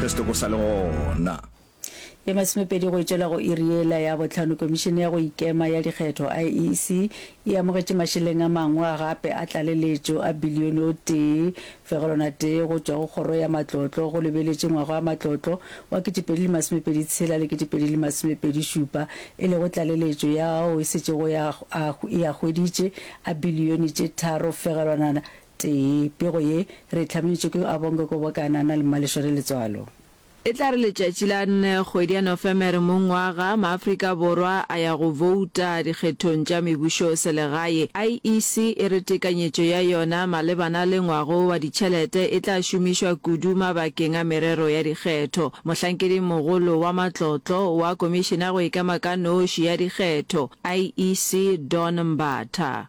Re se toko sa le gona. Ye masomepedi go tšwela go iri yela ya bohlano, Komišene ya go Ikema ya Dikgetho, IEC, e amogetše mašeleng a mangwe a gape a tlaleletšo a bilione o tee, fegelwana tee go tšwa go Kgoro ya Matlotlo go lebeletše ngwaga wa matlotlo wa ketepedi le masomepedi tshela le ketepedi le masomepedi šupa, e lego tlaleletšo ya ao e setšego e a hweditše a bilione tše tharo fegelwana Tee, pego ye, re e hlabanetšwe ke Abonge Kobokana na le Mmaleshwere Letswalo. E tla re letšatši la nne kgwedi ya Nofemere mongwaga, Maafrika Borwa a ya go bouta dikgethong tša mebušoselegae. IEC e re tekanyetšo ya yona malebana le ngwago wa ditšhelete e tla šomišwa kudu mabakeng a merero ya dikgetho. Mohlankedimogolo wa matlotlo wa Komišene ya go Ikema ka Noši ya Dikgetho, IEC, Dawn Mbatha,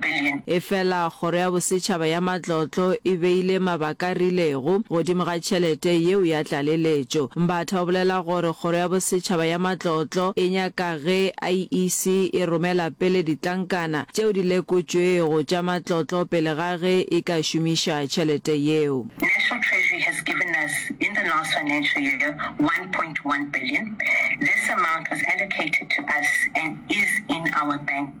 billion. Efela Kgoro ya Bosetšhaba ya Matlotlo e beile mabaka rilego godimo ga tšhelete yeo ya tlaleletšo. Mbatha o bolela gore Kgoro ya Bosetšhaba ya Matlotlo e nyaka ge IEC e romela pele ditlankana tšeo di lekotšwego tša matlotlo pele ga ge e ka šomiša tšhelete yeo. National Treasury has given us in the last financial year one point one billion. This amount was allocated to us and is in our bank.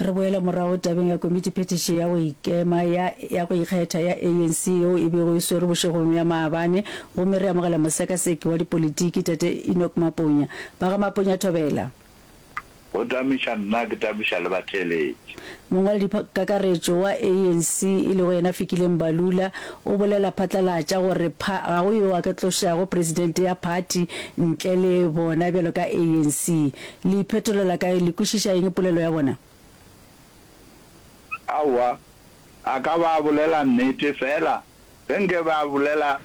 Re boela morago tabeng ya komitiphethiši ya go ikema ya ya go ikgetha ya ANC yeo e bego e swerwe bošegong bja maabane gomme re amogela mosekaseki wa dipolitiki, Tate Enoch Maponya. Ba ga Maponya Thobela. Go tamiša nna ke tamiša le batheeletši. Mongwaladikakaretšo wa ANC e lego yena Fikile Mbalula o bolela phatlalatša gore pha ga go yo a ka tlošago presidente ya phathi ntle le bona bjalo ka ANC. Le iphetolela kae? Le kwešiša eng polelo ya bona? Aowa, a ka ba bolela nnete feela ge nke be a bolela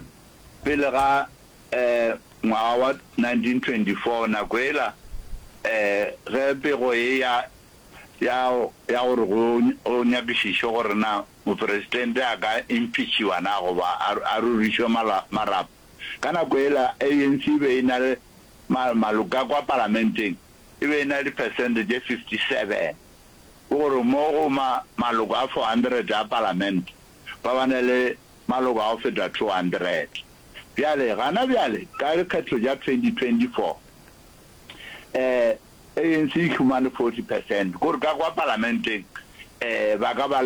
pele ga um ngwaga wa 1924, nako ela um ge pego e ya ya ya gore go go nyakišišwe gore na Moperesidente a ka impeachiwa na goba a a rurišwe mala marapo. Ka nako yela ANC e be e na le maloka kwa palamenteng e be e na le dipersente tše 57, ke gore mo go maloko a 400 a palamente ba ba na le maloko a go feta 200. Bjale gana bjale ka dikgetho tša 2024, um ANC e humane 40 persente, ke gore ka kwa palamenteng um ba ka ba le